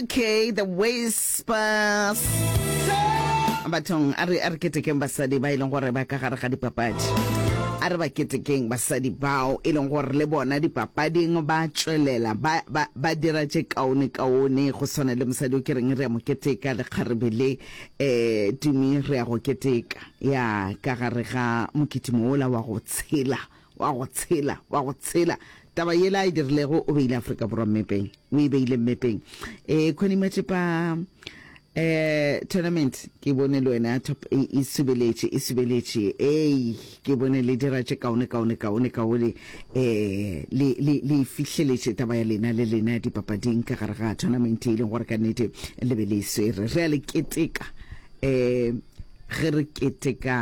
okay the whispers bathong a re a re ketekeng basadi ba e leng gore ba ka gare ga dipapadi a re ba ketekeng basadi bao e leng gore le bona dipapading ba tswelela ba, ba, ba dira tše kaone kaone go tshwana le mosadi o ke reng re ya mo keteka le kgarebe le um tumi re ya go keteka ya ka gare ga mokitimo ola wa go tshela Wa go tshela, wa go tshela. Taba yela a e dirilego, o beile Afrika Borwa mmepeng. O e beile mmepeng. E, Connie Machepa, um tournament ke bone le wena top e, e subeletše, e subeletše. Ei, ke bone le dira tše kaone, kaone, kaone, kaone. Um le, le, le e fihleletše taba ya lena le lena dipapading ka gare ga tournament e leng gore ka nnete le be le e swere. Re a le keteka, um ge re keteka.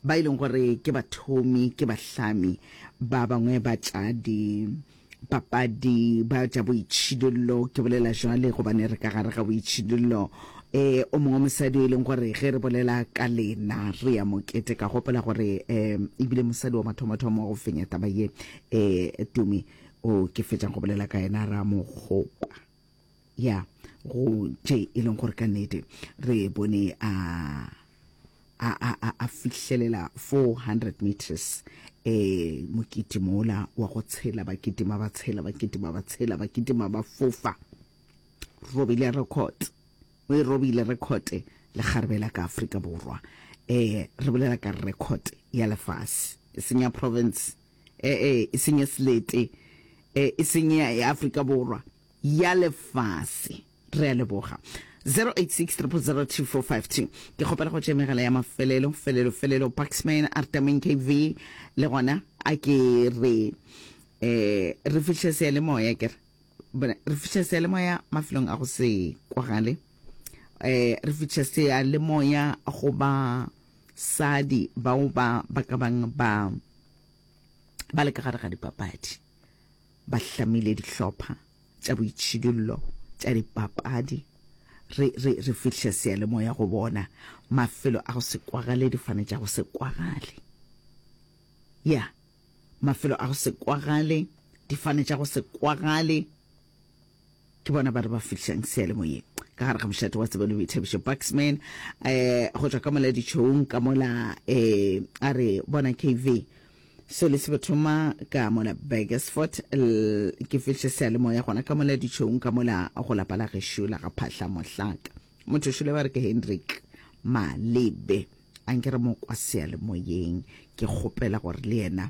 ba e leng gore ke bathomi, ke bahlami, ba bangwe ba tša dipapadi, ba tša boitšhidollo, ke bolela jwale gobane re ka gare ga boitšhidollo. Um o mongwe mosadi o e leng gore ge re bolela ka lena re ya mokete, ka gopola gore um ebile mosadi wa mathomothomo go fenya taba ye, um Tumi o ke fetšang go bolela ka yena, Ramokgopa. ya go tše e leng gore ka nnete re bone a a a a a fihlelela 400 meters eh mokiti mola wa go tshela ba kitima ba tshela ba kitima ba tshela ba kitima ba fofa robile record o e robile record le garbe la ka Afrika borwa eh re bolela ka record ya lefase e senya province eh eh e senya slete eh e senya ya Afrika borwa ya lefase re a leboga 0863002452 ke kgopela go tše megala ya mafelelo felelo felelo paxman artamin kv le gona a ke re eh re fihle seyalemoya ke re re fihle seyalemoya mafelong a go se kwagale eh re fihle seyalemoya go ba sadi bao ba ba ka bang ba ba le ka gare ga dipapadi ba hlamile dihlopha tša boitšhidullo tša dipapadi, re, re, re fihle seyalemoya go bona, mafelo a go se kwagale, difane tša go se kwagale. Ya, mafelo a go se kwagale, difane tša go se kwagale. Ke bona ba re ba fihlišang seyalemoyeng ka gare ga mošate wa tsebo le boithabišo. Buxman um go tšwa ka mola ditšhoung ka mola um a re, Bona KV, so le se bo thoma ka mola Burgersfort, l ke fihliše seyalemoya gona ka mola ditšhoung ka mola go lapa la gešo la ga Phahla Mohlaka. Motho šole ba re ke Hendrik Malebe. A nke re mo kwa seyalemoyeng, ke kgopela gore le yena